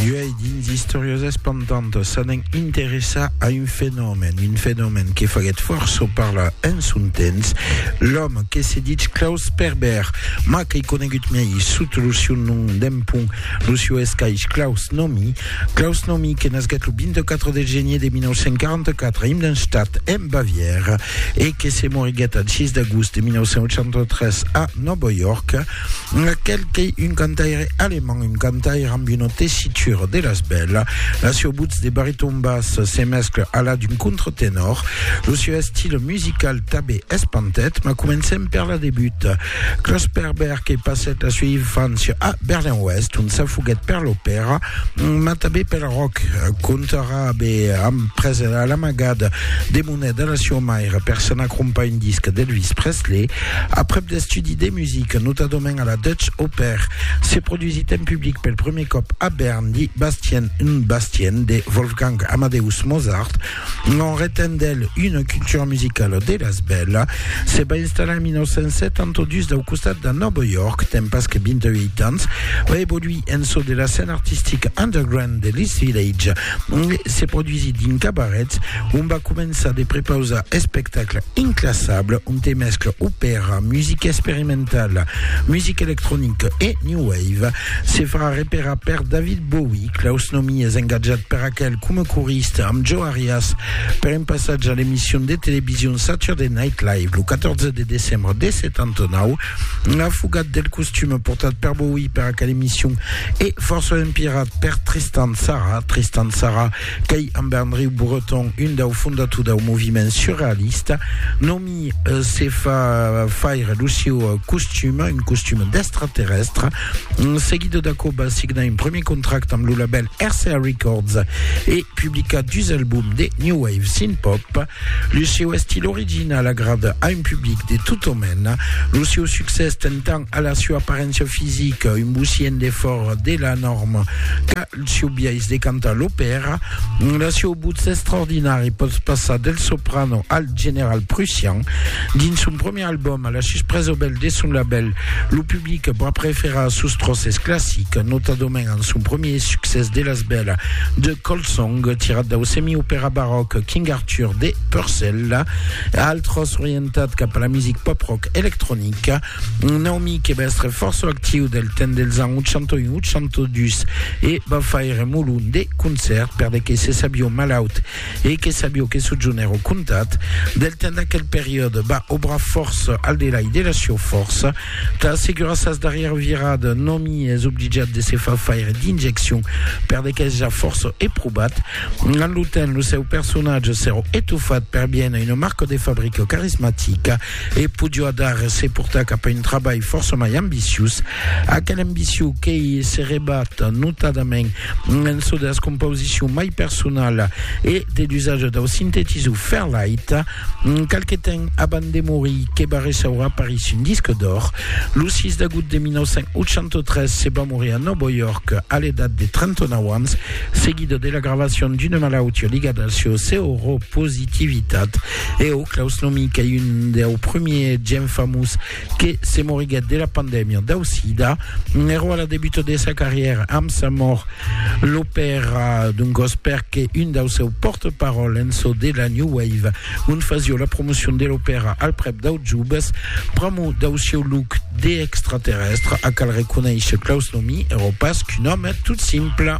Uèi, dins Istòrias espantantas, s'anèn interessar a un fenomèn, un fenomèn que faguèt fòrça parlar en son temps, l'òme que se ditz Klaus Sperber, mas qu'ei conegut mei sot lo siu nom d'empont, lo siu escaish Klaus Nomi. Klaus Nomi que nasguèt lo 24 de genier de 1944 a Immenstadt, en Bavièra, e que se moriguèt al 6 d'agost de 1983 a Nòva York, Aquel qu'ei un cantaire alemand, un cantaire amb una tessitura de las bèla. La seu votz de bariton bas se mescla a la d'un contratenor. Lo seu estil musical tabé es pantet, ma comencem per la debut. Claus Perber que passèt la sua infància a Berlin-Oèst, ont s'afoguèt per l'opèra, ma tabé pel rock, contarà abé amb presa l'amagada de Una delacion maira per s'anar crompar un disc d'Elvis Presley aprèp d'estudi de musica, notadament a la Dutch Oper, se produsit en public pel prumèr còp a Bern di Bastien und Bastien de Wolfgang Amadeus Mozart. En retent d'el una cultura musicala de las bèla, se va installar en 1972 dau costat de Nòva York, tempas que 28 ans, va evoluir en çò de la scèna artistica underground de l'East Village e se produsit dins cabarets, On va començar de prepausar espectacle inclassable ont te mescle opèra, musica experimentala, musica electronica e new wave. Se farà reperar per David Bowie, Klaus Nomi es engatjat per aquel coma corista amb Joe Arias per un passatge a l'emission de television Saturday Night Live lo 14 de decembre de 79. La fugat del costume portat per Bowie per aquel emission e forçament pirat per Tristan Tzara, Tristan Tzara Qu'ei amb Andreu Breton, un dau fondator dau moviment surrealista, nomi se fa faire lo sieu costum, un costum d'extraterrestre. Seguido d'aquò va signar un premier contracte amb lo label RCA Records e publicar dus albums de new wave synth-pop. Lo sieu estil original agrada a un public de tota mena. Lo sieu succès ten tant a la sieu aparéncia fisica, un bocient de fòra de la norma, qu'a Lo sieu biais de cantar l'opèra, lo sieu votz extraordinari pòt passar del soprano al general prussian. Dins son premier album, a la suspresa obèl de son labèl, lo public va preferar sos tròces classics, notadament amb son premier succès de las bèla de Colsong, tirat dau semi-opèra baròc King Arthur de Purcell, altròs orientat cap a la music pop-rock electronica. Un òmi que va èstre fòrça actiu del temps dels ans 81-82 e va faire molon de concèrts per de que se sabió malaut e que sabió que sojoner au comtat del temps d'aquel periòde va obrar fòrça al delai de la sieu fòrça tà assegurar sas darrièra virada. Un òmi es obligat de se far faire d'injeccion per de qu'es ja fòrça eprobat. Amb lo temps lo seu personatge s'èra etofat per bien a una marca de fabrica carismatica. e podió adar se portar cap a un trabalh fòrça mai ambiciós, aquela ambicion qu'ei se rebat notadament en çò de las compausicion mai personala e de l'usatge dau sintetisor Fairlight, qualque temps abans de morir, que va ressaura París un disc d'òr. Lo 6 d'agout de 1983 se va morir a Nòvo York a l'edat de 39 ans, seguida de la gravacion d'una malautiá ligada al seu seropositivitat. Eau, Claus Nomi, qu'ei un deu prumie gent famous que se moriguèt de la pandèmia dau sida, n'èro a la debuta de sa carrièra amb sa mòrt. Lo pèra d'un gòs perque un dau seu pòrte-paròl en çò de la New Wave, ont fasió la promocion de l'opèra al prèp dau jubes, pr'amor dau sieu look de extraterrèstre, a cal reconéisher Claus Nomi èro pas qu'un òme tot simple.